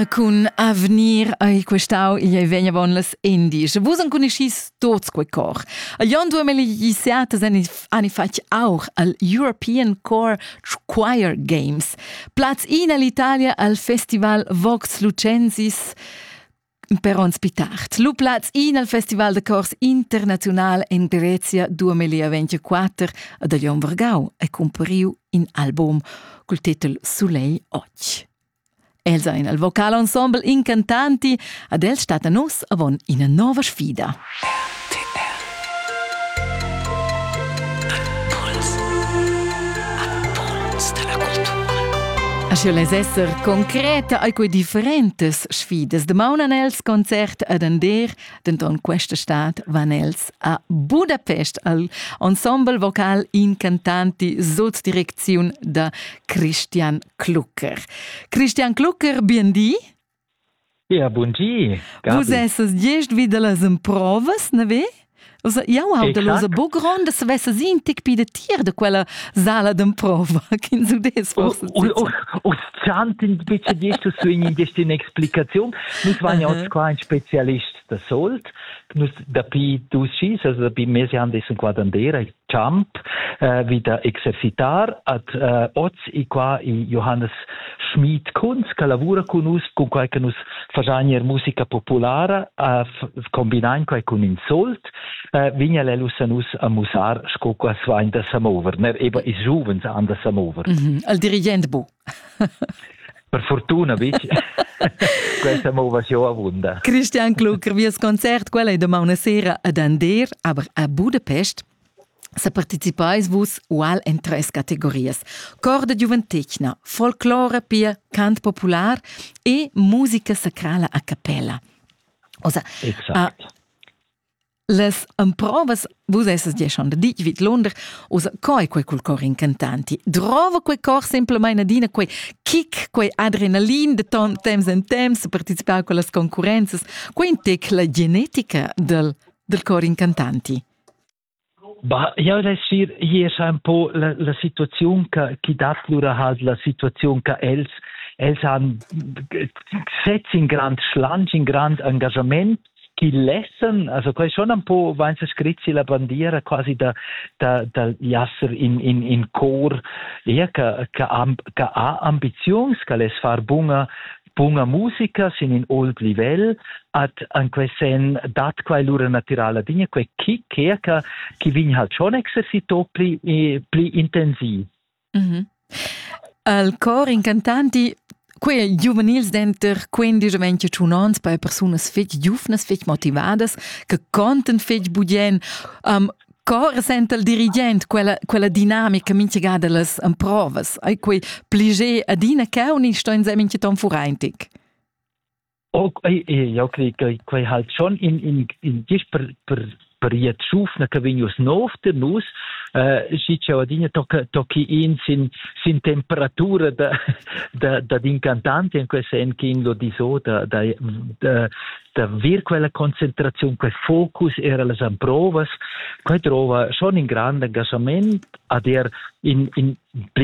cun avnir ei questau igl ei vegna bon las indies. Vus enconuschis tots quei cor. Jon duemeli gissiatas ani fatg auch al European Core Choir Games. Platz in all'Italia al Festival Vox Lucensis per ons pitart. Lu platz in al Festival de Cors Internazional in Grezia 2024 ad Jon Vargau e cumpariu in album col titel Soleil Och. Els ein al vocal ensemble incantanti, ad els stat a nus avon ina nova sfida. Sche lez esser concreta ai quei differentes sfidas de maunan els concert adender, denton questa stad van els a Budapest al ensemble vocal incantanti sut direcziun da Christian Klucker. Christian Klucker, bien di. Ja, bun di. Gabi. Vus esses gest vid las emprovas, ne ve? Also, jau ho da los bogron, das vesse sie in tic pi de tier de quella sala d'emprova, kin su des forse. Uns zantin bitte dietro su in in explication. Nus waren ja oz qua ein Spezialist da solt nus dapi dus schis dapi mesi han des quadandera champ uh, wieder exercitar at uh, oz i qua i Johannes Schmid Kunz che lavura con us con quai che nus fasanier musica populara uh, combinain quai con in solt uh, vigna lelus a nus a musar sco qua svain da samover ner eba is giuvens an da samover mm -hmm. al dirigent bu Per fortuna bitg. Questa mo va show avunda. Christian Klucker, vies concert quella è domani sera ad Ander, aber a Budapest. Se partecipais vus ual en tres categorias: cor de giuventetgna, folclore pia cant popular e musica sacrala a cappella. Osa, exact. A, Las emprovas vus essas dieschond ditg vid Lunder, usa coi quei cul cor incantanti. Drova quei cor semplamain adina quei kick, quei adrenalin de ton temps en temps participar con las concurrenzas, quei intec la genetica del, del cor incantanti. Bah, jau resir hier un po la, la situaziun che chi dat lura has la situaziun che els els han setz in grand schlanch, in grand engagement chi lessan, also quai schon un po vainsa scrit si la bandiera quasi da, da, da jasser in, in, in cor ja, che, che, che ha ambiziuns, che les far bunga, bunga musica sin in old livel, at an quei sen dat quai lura naturala dinja, quei chi che che vin halt schon exercito pli, pli intensiv. Mhm. Al cor incantant di quei giuvenils denter 15 e 25 onns per persunas fetg giuvnas, fetg motivadas, che conten fetg budien. Um, cor senta il dirigent quella, quella dinamica mintgada las emprovas. Ei quei pliger adina che uni sto insem in ton furentic. jau crei che quei halt schon in in in gis per per per je tschufna che vignus nov de nus äh, si cialadine tocca tocchi in sin sin temperatura da da da d'incantanti in quei sen che in lo diso da da da da vir quella concentrazione quel focus era las amprovas quei trova schon in grande engagement a der in in